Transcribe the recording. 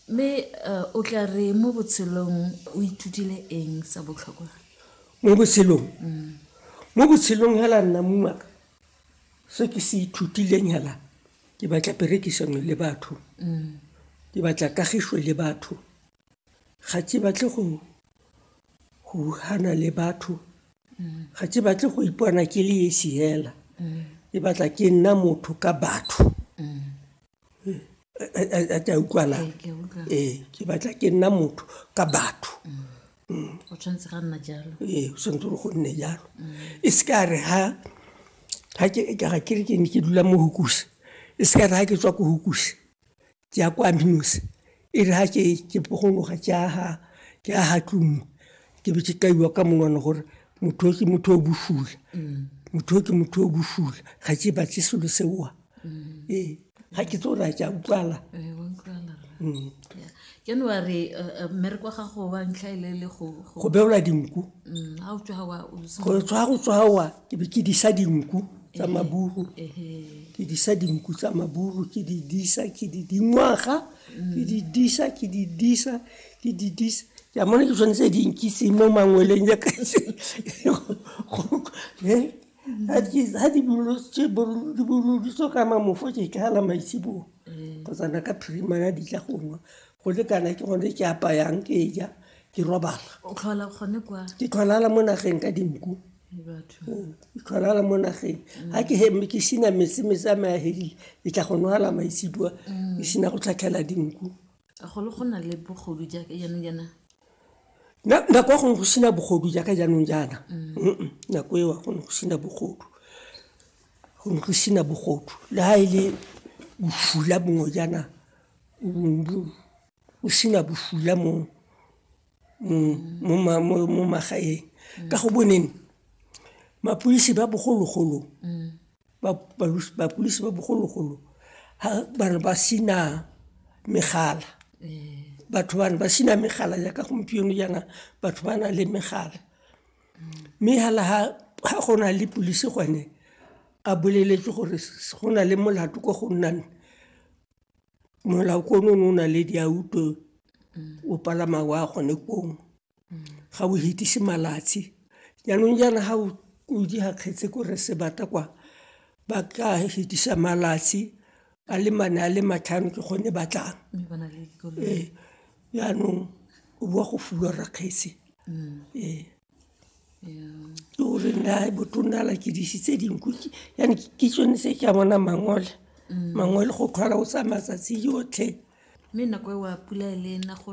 Mme o tla re mo botshelong o ithutile eng sa botlhokwa? Mo botshelong? Mo botshelong hela nna mongaka se ke se ithutileng hela ke batla perekisano le batho, ke batla kagišo le batho, ga ke batle go hana le batho, ga ke batle go ipona ke le esi hela, ke batla ke nna motho ka batho. a tla utlwalang ee ke batla ke nna motho ka batho mm. o tshwanetse ga nna jalo ee o tshwanetse go nne jalo e se ka re ha ga ke ga ke re ke ne ke dula mo hukuse e se ka re ga ke tswa ko hukuse ke ya kwa minose e re ha ke pogologa ke aga ke aga tlumo ke be ke kaiwa ka monwana gore motho ke motho o bosula motho ke motho o bosula ga ke batle selo seoa ee ga ke tse ore a ke a utlwala january mmereko wa gago wa ntlha e le le go go beola dinku go tswa go tswawa ke be ke disa dinku tsa eh, maburu eh, ke disa dinku tsa maburu ke di disa ke di dingwaga ke di disa ke di disa ke di disa ke amone ke tshwanetse di nkise mo mangweleng ya ka ga di boloditso ka mamofo ke tlala maitsibong kgotsana ka phirimana di tla gongwa go le kana ke gone ke apayang ke ja ke robala ke tlholala mo nageng ka dinku tlholala mo nageng ga ke heme ke sina metsi metsi a meahelile ke tla go nwala maitsibua mm. ke sina go tlhatlhela dinku golo go na le bogodu jaaka jaanong jaana nako ya gone go sina bogodu jaaka jaanong jaana mm. nako eo gone go sina bogodu gone go sina bogodu le ga e le bofula bongwe jaana o sina bofula mo mo magaeng. Ka go boneng mapodisi ba bogologolo ha ba ne ba sena megala, batho ba ne ba sena megala jaaka gompieno jaana batho ba na le megala. Mme hela ha go na le police gone a boleletswe gore go na le molato ko go nnang molao ko no o na le diauto o palama wa gone kong ga o hetise malatsi jaanong jaana ga o di ga kgetse ko re se bata kwa ba ka hetisa malatsi a le mane a le matlhano ke gone ba tlang ee jaanong o boa go fulwa rakgetse ee ke gore nda botonna la ke dise tse dinku yane ke tsone se ke a bona mangole mm. mangole go tlhola o tsaya matsatsi yotlhe mme nako e wa pula e le nna go